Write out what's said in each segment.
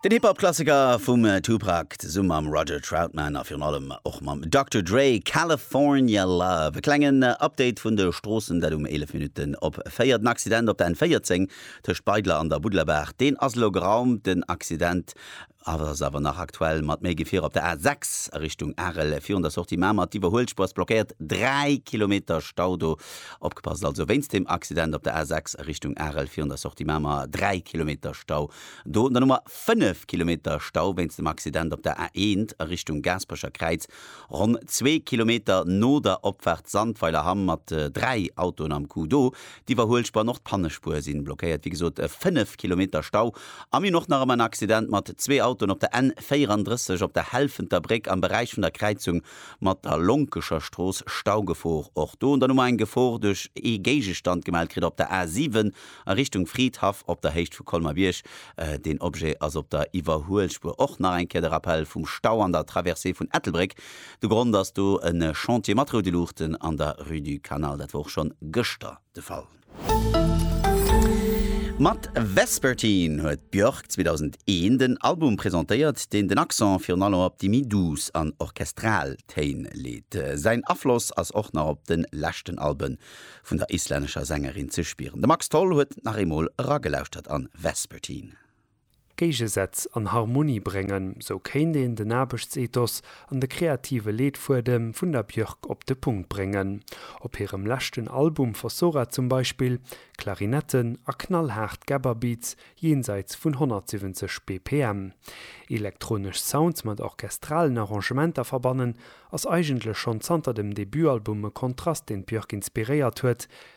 Den Hip-Hop-Klassiker vum Tupac zesumme mam Roger Troutman a virun allem och mam Doctor Dre, California Love. E klengen Update vun de Stroossen, dat um 11 Minutten op 4. Den Accident op der N14 tëscht Beidler an der Buddlerbaach, deen ass elo geraumt. Den Accident ass awer nach aktuell mat méi Gefier op der A 6 a Richtung Arel virun der Sortie Mamer. D'Iwwerhuelspuer ass blockéiert, 3 Kilometer Stau do. Opgepasst also wéinst dem Accident op der A 6 a Richtung Arel virun der Sortie Mamer, 3 Kilometer Stau do. An der Nummer 5 Kilometer Stau wéinst dem Accident op der A 1 a Richtung Gaasperecher Kräiz, ronn zwee Kilometer no der Opfaart Sandweiler Hamm mat 3 Autoen am Coup do. D'Iwwerhuelspuer an och d'Pannespuer si blockéiert. Wéi gesot e 5 Kilometer Stau. A mir hunn och nach ëmmer en Accident mat zwee Autoen op der N 34 op der Helfenter Bréck am Beräich vun der Kräizung mat der Lonkescher Strooss. Staugefor och do. An dann hu mer eng Gefor duerch ee Géigestand gemellt kritt op der A 7 a Richtung Fridhaff op der Héicht vu Colmer-Bierg. Deen Objet ass op der Iwwerhuelspuer. Och nach eng Kéier de Rappel vum Stau an der Traversée vun Ettelbréck De Grond ass do e Chantier mat roude Luuchten an der Rue du Canal. Dat war och schonn gëschter de Fall. Mat Vespertine huet d'Björk 2001 den Album presentéiert, deen den Accent virun allem op déi méi douce an orchestral Téin leet. Säin Afloss ass och nach op de leschten Albe vun der islännescher Sängerin ze spieren. De Max Tholl huet nach eemol eragelauschtert an Vespertine. Géigesätz an Harmonie bréngen, sou kéint een den Aarbechtsethos an de kreative Leetfuedem vun der Björk op de Punkt bréngen. Op hirem leschten Album Fossora zum Beispill, Klarinetten a knallhaart Gabber-Beats jenseits vun 170 BPM. Elektronesch Sounds mat orchestralen Arrangementer verbannen, ass eigentlech schonn zanter dem Debutalbum e Kontrast, deen d'Björk inspiréiert huet,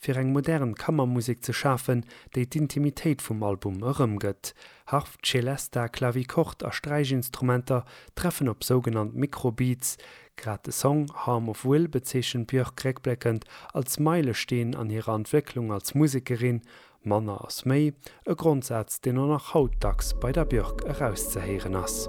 fir eng modern Kammermusek ze schafen, déi d'Intimitéit vum Album erëmgëtt. Harf, Celesta, Clavichord a Sträichinstrumenter treffen op sougenannt Micro-Beats. Grad de Song Harm of Will bezeechent d'Björk réckbléckend als Meilesteen an hirer Entwécklung als Musekerin, Manner ass méi, e Grondsaz, deen och nach haut dacks bei der Björk erauszehéieren ass.